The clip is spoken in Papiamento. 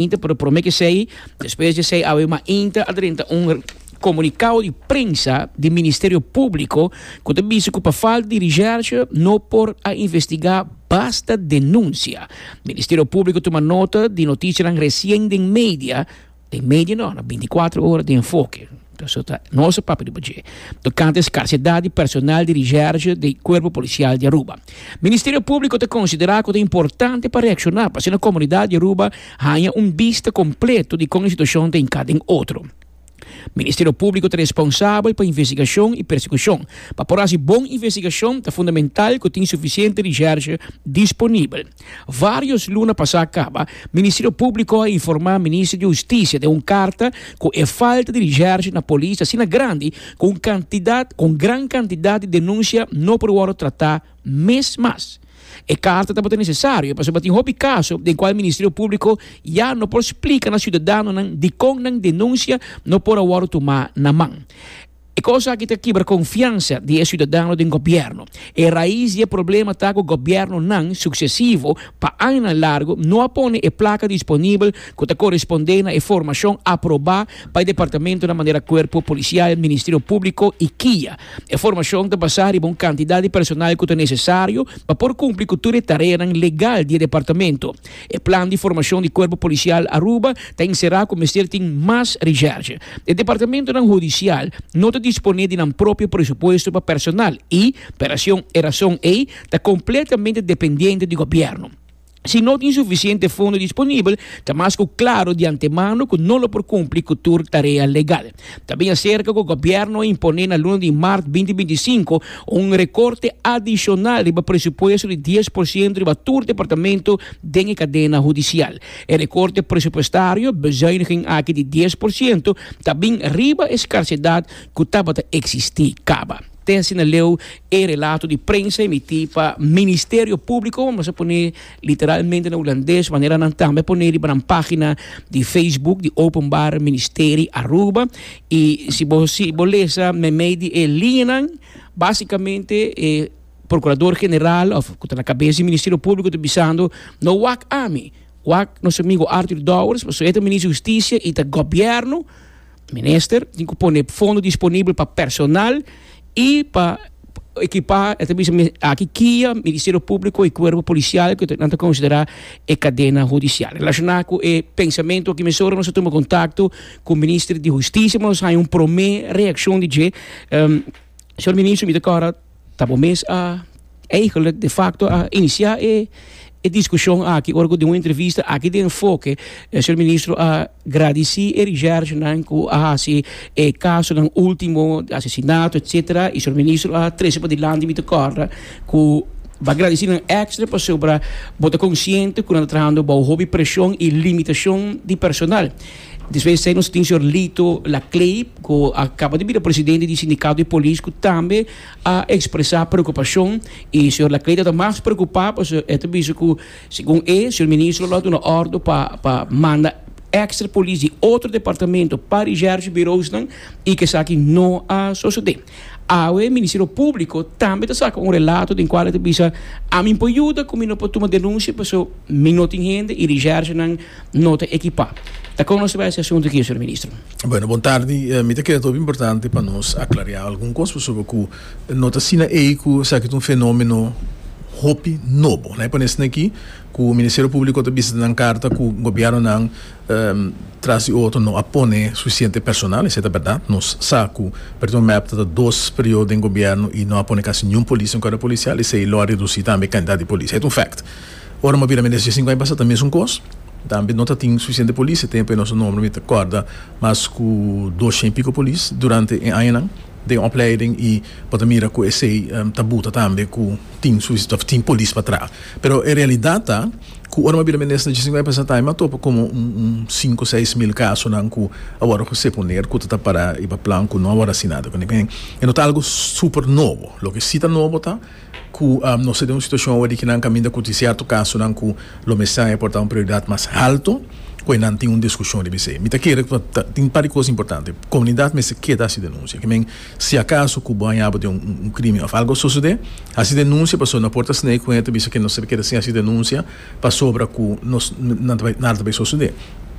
Inter por prome kesei, despues di esei awe ma Inter a drenta un komunikao di prensa di Ministerio Públiko ku ta bisa ku pa falta di risèrshë no por a investigá basta denunsia. Ministerio Públiko tuma nota di notishanan resien den media, den media no, na binticuatro ora di Enfoke. Eso ta nos e papia di bo dje. Tocante e scarsedad di personal di recherche di Cuerpo Policial di Aruba. Ministerio Publico ta considera cu ta importante pa reacciona pa asina e comunidad di Aruba haya un bista completo di con e situacion ta hinca den otro. Ministerio Publico ta responsabel pa investigacion y persecucion. Pa por haci bon investigacion ta fundamental cu tin suficiente recherche disponibel. Varios luna pasá kaba, Ministerio Públiko a informá Minister di Hustisia den un karta ku e falta di rishèrsh na polis ta asina grandi ku un kantidat ku un gran kantidat di denunsia no por wòrdu tratá mes mas. E karta tabata nesesario pasobra tin hopi kaso den kual Ministerio Públiko ya no por splika na siudadanonan dikon nan denunsia no por a wòrdu tumá na man. E kos aki ta kibra konfiansa di e siudadano den gobièrnu. E rais di e problema ta ku gobièrnunan suksesivo pa añanan largu no a pone e plaka disponibel ku ta korespondé na e formashon aprobá pa e departamentonan manera Kuerpo Polisial, Ministerio Públiko i kia. E formashon ta basá riba un kantidat di personal ku ta nesesario pa por kumpli ku tur e tareanan legal di e departamento. E plan di formashon di Kuerpo Polisial Aruba ta enserá ku mester tin mas recherche. E departamentonan hudisial no ta disponé di nan propio presupuesto pa personal i, p'erason e rason ei, ta kompletamente dependiente di gobièrnu. Si no tin sufisiente fondo disponibel, ta mas ku klaro di antemano ku no lo por kumpli ku tur tarea legal. Ta bin aserka ku gobièrnu a imponé na luna di Mart binti binti i sinku un rekorte adishonal riba presupuesto di dies por sientu riba tur departamentu den e kadena hudisial. E rekorte presupuestario, bezuiniging, aki di dies por sientu ta bin riba e skarsedat ku tabata eksistí, kaba. Tessy na leu e relato di prensa emití pa Ministerio Públiko, mas a pone Literalmente na Hulandes, manera nan tambe pone riba nan pagina di Facebook di Openbaar Ministerie Aruba. Y si bo si bo lesa meimei di e liñanan, basicamente e Procurador General of cu ta na cabeza di Ministerio Publico ta bisando, no wak ami, wak nos amigo Arthur Dowers, pasobra e ta Minister di Husticia y ta Gobierno, Minister tin cu pone fondo disponibel pa personal y pa equipa, e ta bisa aki kia Ministerio Público y Cuerpo Policial que nan ta considera e cadena judicial. Relaciona cu e pensamento aki mesora nos a tuma contacto cu Minister di Justicia, pero nos haña un prome reaccion di dje. Um, Señor Ministro, mi ta cora Ta bo mes a eigenlijk de facto a inicia e e discusion aki ora cu den un entrevista aki den Enfoke e señor ministro a gradici e recherchenan cu a haci e casonan ultimo di asesinato etcetera y señor ministro a trece padilanti mi ta corda cu bo a gradici nan extra pasobra bo ta consciente cu nan ta trahando bao hopi presion y limitacion di personal. Despues esei nos tin señor Lito Lacleip cu a caba di bira presidente di Sindicato di Polis cu tambe a expresa preocupacion y señor Lacleip tabata mas preocupa pasobra e ta bisa cu segun e señor Ministro lo a duna ordo pa pa manda extra polis di otro departamento pa di Shercio Biroosnan y cu esaki no a sosode. Awe e Ministerio Públiko tambe ta saka un relato den kual e ta bisa, Ami por yuda ku mi no por tuma denunsia paso mi no tin hende i rishersenan no ta ekipá. Ta kon nos ta bai e asuntu aki, señor Ministro? Bueno, bon tardi. Mi ta kere ta hopi importante pa nos aklariá algun kos pasobra ku no ta asina ei ku esaki ta un fenómeno hopi nobo. Laik pone esaki ku Ministerio Públiko ta bisita nan karta ku gobièrnunan. Tras di otro no a pone suficiente personal, esei ta berdad. Nos sa cu pa e momento ta dos periodo den gobierno y no a pone casi niun polis den cuerpo policial, esei lo a reduci tambe e cantidad di polis. Ey ta un fact. Ora mi bira mi nestra cinco aña pasa ta mesun cos, tambe no ta tin suficiente polis. E tempo ey nos ta nombra mi ta corda mas cu doshen y pico polis durante e añanan den opleiding y bo ta mira cu esei ta buta tambe cu tin tin polis pa traha. Pero e realidad ta. Ku ora mi a bira mi nesta djisiñai pa Satay mi a topa komo un un sinku seis mil kasonan ku a wòrdu hosé poner ku ta ta para i pa plan ku no a wòrdu hasi nada ku ningén. E no ta algu super nobo. Loke si ta nobo ta ku nos ta den un situashon awe di ke nan kaminda ku tin sierto kasonan ku lo mester e por ta un prioridat mas haltu ku e nan tin un diskushon riba esei. Mi ta kere tin un par di kos importante. Komunidat mester keda hasi denunsia. Si acaso cu bo a yaba den un crimen of algo a sucede, haci denuncia pasobra no por ta snei cu hende ta bisa que no ser keda sin haci denuncia pasobra cu nos nada ta bay sucede.